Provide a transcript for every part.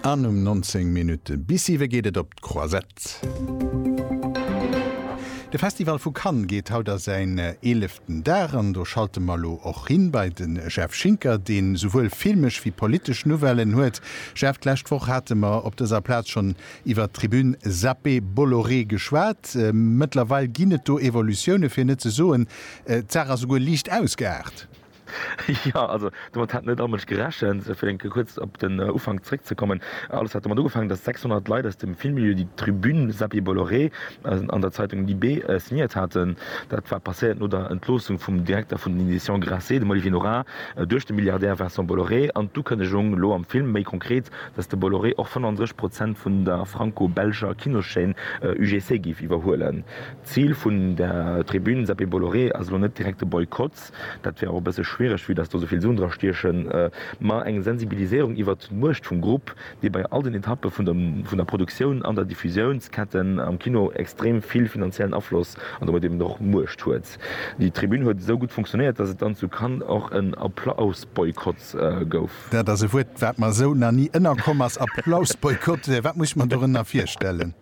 An um 19 Minutte bis siwe geet et op d'Croisette. De Festival vu Cannes geet haut a säin eeleften Dag an do schalte mer elo och hin bei de Jeff Schinker, dee souwuel filmesch wéi politesch Nouvellen huet. Jeff, d'lescht Woch hate mer op dëser Plaz schonn iwwert d'Tribune Zappé Bolloré geschwat. Mëttlerweil ginn et do Evolutioune, fir net ze soen, d'Saach ass souguer liicht ausgeaart. Jo, also domat hätt net all Mënsch gerechent. Fir eng Kéier kuerz op den Ufank zréckzekommen, Alles hat domat ugefaangen, datt 600 Leit aus dem Filmmilieu déi Tribune Seppi Bolloré an der Zeitung Libé signéiert haten. Dat war passéiert no der Entloossung vum Direkter vun den Editions Grasset, dem Olivier Nora, duerch de Milliardär Vincent Bolloré an d'Ukënnegung elo am Film, méi konkret, datt de Bolloré och 35 Prozent vun der franco-belscher Kinoschaîne UGC géif iwwerhuelen. D'Zil vun der Tribune Seppi Bolloré ass elo net direkt de Boykott. Gesetz. Dat wär och e bësse schwiereg, vue dass do esou vill Suen dra stiechen. Mä eng Sensibilisierung iwwert d'Muecht vum Grupp, dee bei all den Etappe vun der Produktioun an der Diffusiounsketten am Kino extrem vill finanziellen Afloss an domat eben och Muecht huet. Déi Tribün huet esou gutt funktionéiert, dass et dann zu Cannes och en Applausboykott gouf. Dat ass e Wuert, wat mer esou nach ni ënnerkomm ass, Applausboykott. Wat muss ech mer dorënner virstellen?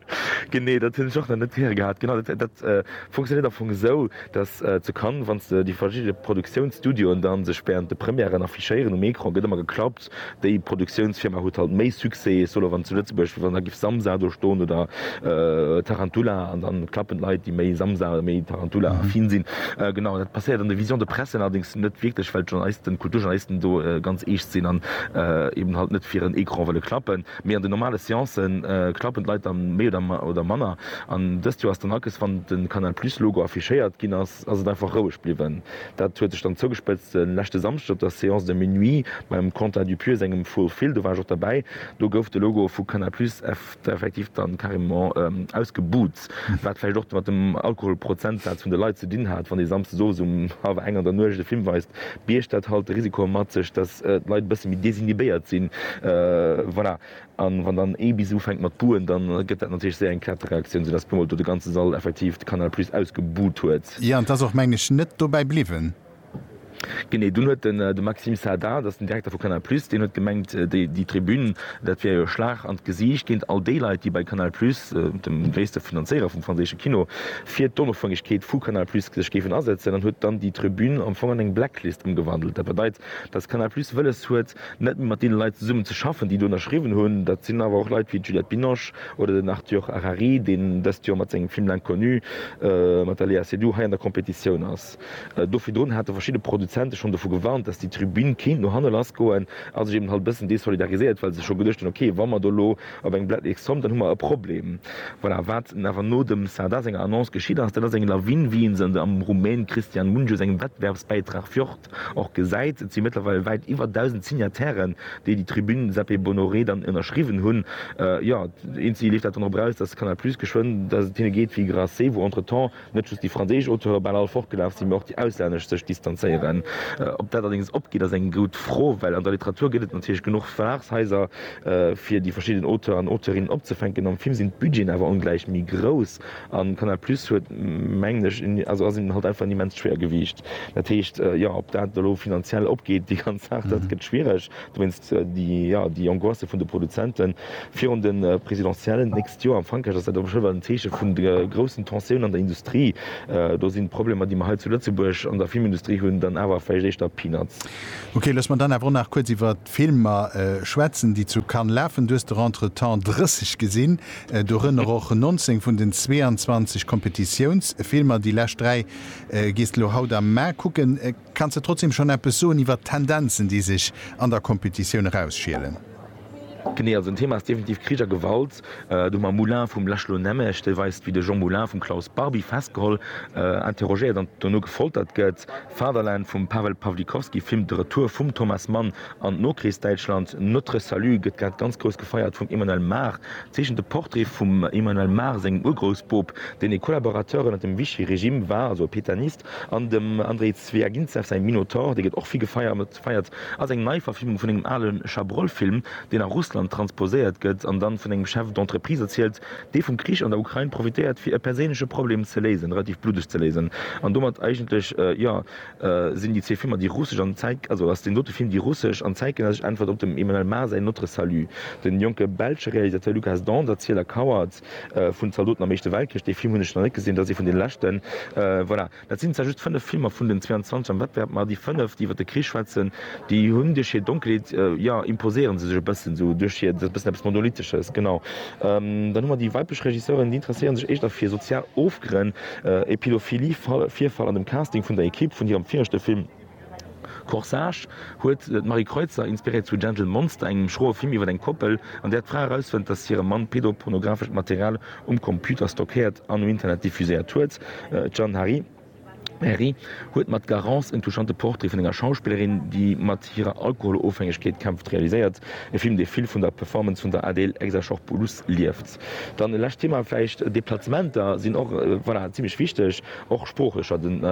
Genee, dat hunn ech och nach net héiere gehat. Genau, dat, dat funktionéiert am Fong esou, datt zu Cannes, wann s de déi verschidde Produktiounsstudioen da sech während de Premièren affichéieren, um Ecran gëtt ëmmer geklappt, déi Produktiounsfirma huet halt méi Succès, ech soen elo wann zu Lëtzebuerg, wann da géif Samsa do stoen oder Tarantula, an da klappen d'Leit, déi méi Samsa oder méi Tarantula-affin sinn. Genau, dat passéiert an de Visions de presse allerdéngs net wierklech, well d'Journalisten, d'Kulturjournalisten do ganz eescht sinn an eeben halt net fir en Ecran wëlle klappen. Mee an den normale Seancë klappen d'Leit dann méi oder manner. An dëst Joer ass dann akes, wann de Canal Plus Logo affichéiert ginn ass, ass et einfach roueg bliwwen. Dat huet sech dann zougespëtzt de leschte Samschden op der Séance de minuit beim Quentin Dupieux sengem Full Fil. Do war ech och derbäi. Do gouf de Logo vu Canal Plus effektiv dann carrément ausgebuht. Wat vläicht och mat dem Alkoholprozentsaz vun de Leit ze dinn hat, wann ee Samsdes owes um hallwer eng an der Nuecht e Film weist, biergt dat halt de Risiko mat sech, datt d'Leit e bësse méi desinhibéiert sinn. Voilà. A wann dann ee bis ufänkt mat buhen, da gëtt dat natierlech séier eng Kettereaktioun, soudatt puermol do de ganze Sall effektiv de Canal Plus ausgebuht huet. Jo, an 't ass och, mengen ech, net dobäi bliwwen. Genee, dunn huet de Maxime Saada, dat ass den Direkter vu Canal Plus, deen huet gemengt, déi Tribün, dat wär jo e Schlag an d'Gesiicht géint all déi Leit, déi bei Canal Plus, dem gréisste Finanzéierer vum franséische Kino, fir d'Onofhängegkeet vu Canal Plus sech géifen asetzen, an huet dann déi Tribün am Fong an eng Blacklist ëmgewandelt. Dat bedeit, datt Canal Plus wëlles huet, net méi mat deene Leit zesummen ze schaffen, déi do ënnerschriwwen hunn. Dat sinn awer och Leit wéi d'Juliette Binoche oder den Arthur Harari, deen dëst Joer mat sengem Film L'Inconnu mat der Léa Seydoux hei an der Competitioun ass. Aarbecht. Do virdrun hate verschidde Produzente schonn dovu gewarnt, dass déi Tribün kéint no hanne lassgoen a sech eben halt e bëssen desolidarisiert, well se scho geduecht hunn, ok, wa mer do elo op engem Blat nix kommen, dann hu mer e Problem. Voilà, wat awer no dem Sardar senger Annonce geschitt ass, dat ass eng Lawine, wéi ee se an de am Rumän Cristian Mungiu sengem Wettbewerbsbäitrag Fjord och gesäit. Et si mëttlerweil wäit iwwer 1.000 Signatairen, déi déi Tribün Sepe Bonoré dann ënnerschriwwen hunn. Jo, eenzegie leeft dat dann drop eraus, dass Canal Plus geschwënn, dass et hinne geet wéi Grasse, wou entretemps Net just déi franséisch Auteure bal all fortgelaf sinn, mee och déi auslännesch sech distanzéieren. Ob dat allerdéngs opgeet, ass eng goud Fro, well an der Literatur gëtt et natierlech genuch Verlagshaiser, fir déi verschidden Auteuren an Auteurinnen opzefänken. Am Film sinn d'Budgeten awer ongläich méi grouss, a Canal Plus huet, mengen ech, also ass hinnen halt einfach en immenst Schwéiergewiicht. Dat heescht, jo, ob dat elo finanziell opgeet, déi ganz Saach, dat gëtt schwiereg. Dowéinst déi Angoisse vun de Produzenten virun de Presidentiellen d'nächst Joer. Am Frankräich ass dat awer scho ewell en Zeeche vun de groussen Tensioun an der Industrie. Do sinn d'Problemer, déi mer hei zu Lëtzebuerg an der Filmindustrie hunn, dann awer vläicht éischter Peanuts. Ok, looss mer dann awer och nach kuerz iwwert d'Filmer schwätzen, déi zu Cannes lafen. Du hues der entretemps 30 gesinn, dorënner och 19 vun den 22 Kompetitiounsfilmer. Déi lescht dräi gees de lo haut am Mä kucken. Kanns de trotzdem schon eppes soen iwwert d'Tendenzen, déi sech an der Kompetitioun erausschielen? Genee, also en Thema ass definitiv Krich a Gewalt. Do hu mer Moulin vum László Nemes, dee weist, wéi de Jean Moulin vum Klaus Barbie festgeholl, interrogéiert an dono gefoltert gëtt. Fatherland vum Pawel Pawlikowski filmt de Retour vum Thomas Mann an d'Nokrichsdäitschland. Notre Salut gëtt grad ganz grouss gefeiert vum Emmanuel Mar, zeechent e Portrait vum Emmanuel Mar sengem Urgroussboob, deen e Collaborateur ënnert dem Vichy-Regime war, also e Pétainiste. An dem Andrei Zwiagintsev säi Minotaur, dee gëtt och vill gefeiert, ass eng Neiverfilmung vun engem ale Chabrol-Film, deen a Russland transposéiert gëtt an dann vun engem Chef d'entreprise erzielt, dee vum Krich an der Ukrain profitéiert, fir e perséinleche Problem ze léisen, relativ bluddeg ze léisen. An domat eigentlech, jo, sinn déi zwee Filmer déi russesch an, also ass deen dote Film déi russesch an zäitgenëssesch Äntwert op dem Emmanuel Mar säin Notre Salut. De jonke belsche Realisateur Lukas Dont, Erziler, Kauert. vun Zaldoten am Éischte Weltkrich, dee Film hunn ech nach net gesinn, dat ass ee vun den leschten. Voilà, dat sinn zwar just fënnef Filmer vun den 22 am Wettbewerb, ma déi fënnef, déi iwwer de Krich schwätzen, déi hunn duerch hir Donkelheet, jo, imposéiere se sech e bëssen esou duerch hir, dat ass e bëssen eppes Monolithesches, genau. Dann hu mer déi weiblech Regisseuren, déi interesséiere sech éischter fir sozial Ofgrënn, e Pädophilie-Virfall an dem Casting vun der Ekipp vun hirem viregte Film. Corsage huet d'Marie Kreutzer inspiréiert zu Gentle Monster, engem schroe Film iwwer eng Koppel, an där d'Fra erausfënnt, datt hire Mann pedopornografescht Material um Computer stockéiert an um Internet diffuséiert huet. D'Jeanne Herry huet mat Garance en touchante Portrait vun enger Schauspillerin, déi mat hirer Alkoholofhängegkeet kämpft, realiséiert, e Film, dee vill vun der Performance vun der Adele Exarchopoulos lieft. Dann e lescht Thema vläicht, Deplacementer sinn och, voilà, zimlech wichteg, och sproochlech. Scho den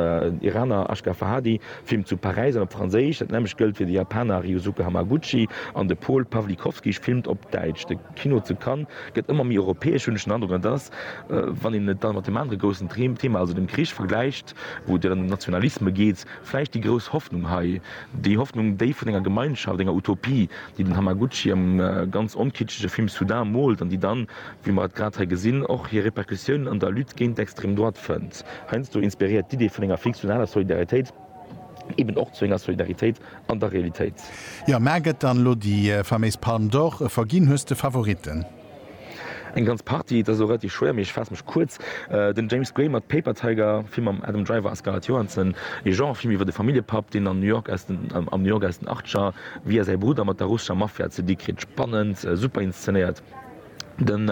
Iraner Ashgar Farhadi, Film zu Paräis an op Franséisch, dat nämmlecht gëllt fir de Japaner Ryusuke Hamaguchi an de Paul Pawlikowski filmt op Däitsch. De Kino zu Cannes gëtt ëmmer méi europäesch, hunn ech den Androck. An et ass, wann een et dann mat deem anere groussen Thema, also dem Krich vergläicht, wou et jo dann ëm Nationalisme geet, vläicht déi grouss Hoffnung hei, déi Hoffnung, déi vun enger Gemeinschaft, enger Utopie, déi den Hamaguchi am ganz onkitschege Film Sudan moolt, an déi dann, wéi mer et grad hei gesinn, och hir Repercussiounen an der Lutte géint d'Extrême droite fënnt. Heiansdo inspiréiert d'Idee vun enger fiktionaler Solidaritéit eben och zu enger Solidaritéit an der Realitéit. Jo, mä gëtt dann elo déi faméis Palme d'Or verginn? Hues de Favoritten? Eng ganz Partie, et ass elo relativ schwéier, mee ech faasse mech kuerz. Den James Gray mat Paper Tiger, Film mam Adam Driver a Scarlett Johansson, ee Genre-Film iwwer e Familljepapp, deen an New York aus den am New York aus den Achtscher via säi Brudder mat der russescher Mafia ze di kritt. Spannend, super inszenéiert. Dem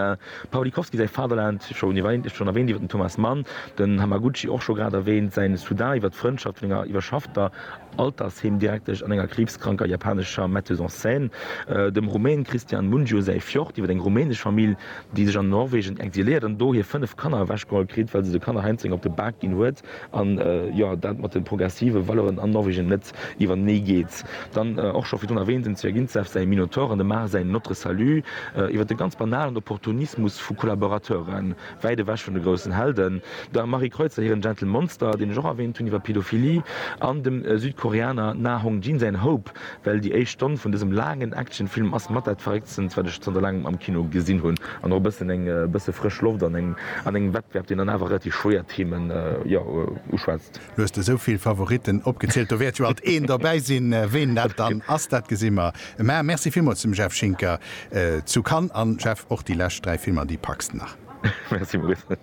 Pawlikowski säi Fatherland, scho erwäänt iwwer den Thomas Mann, den Hamaguchi och scho grad erwäänt, säin Sudan iwwer d'Frëndschaft vun enger iwwerschaffter, Altersheemdirektesch an enger kriibskranker japanescher Metteuse en scène, dem Rumän Cristian Mungiu säi Fjord iwwer eng rumänesch Famill, déi sech an Norwegen exiléiert an do hir 5 Kanner ewechgeholl kritt, well se de Kanner heiansdo eng op de Bak ginn huet an, jo, dat mat de progressive Valeuren an Norwegen net iwwertenee geet. Dann och scho virdrun erwähnt, dem Zwyagintsev säi Minotaur an dem Mar säin Notre Salut, iwwer de ganz banalen Opportunismus vu Kollaborateuren, Wäit ewech vun de groussen Helden, der Marie Kreutzer hiren Gentle Monster, deen ech och erwähnt hunn, iwwer Pädophilie, an dem Südkoreaner Na Hong Jin säin Hope, well déi éischt Stonn vun dësem laangen Actionfilm ass mat dat Verrécktstens, wat ech zanter laangem am Kino gesinn hunn, an och e bëssen eng bësse frësch Loft an engem Wettbewerb, deen dann awer relativ schwéier Themen, jo, uschwätzt. Lo hues de esou vill Favoritten opgezielt, do wäert jo alt een dobäi sinn. Ween dat dann ass, dat gesi mer. Mä Merci villmools dem Jeff Schinker zu Cannes. An Jeff, och déi lescht dräi Filmer, déi packs de nach? Merci Maurice.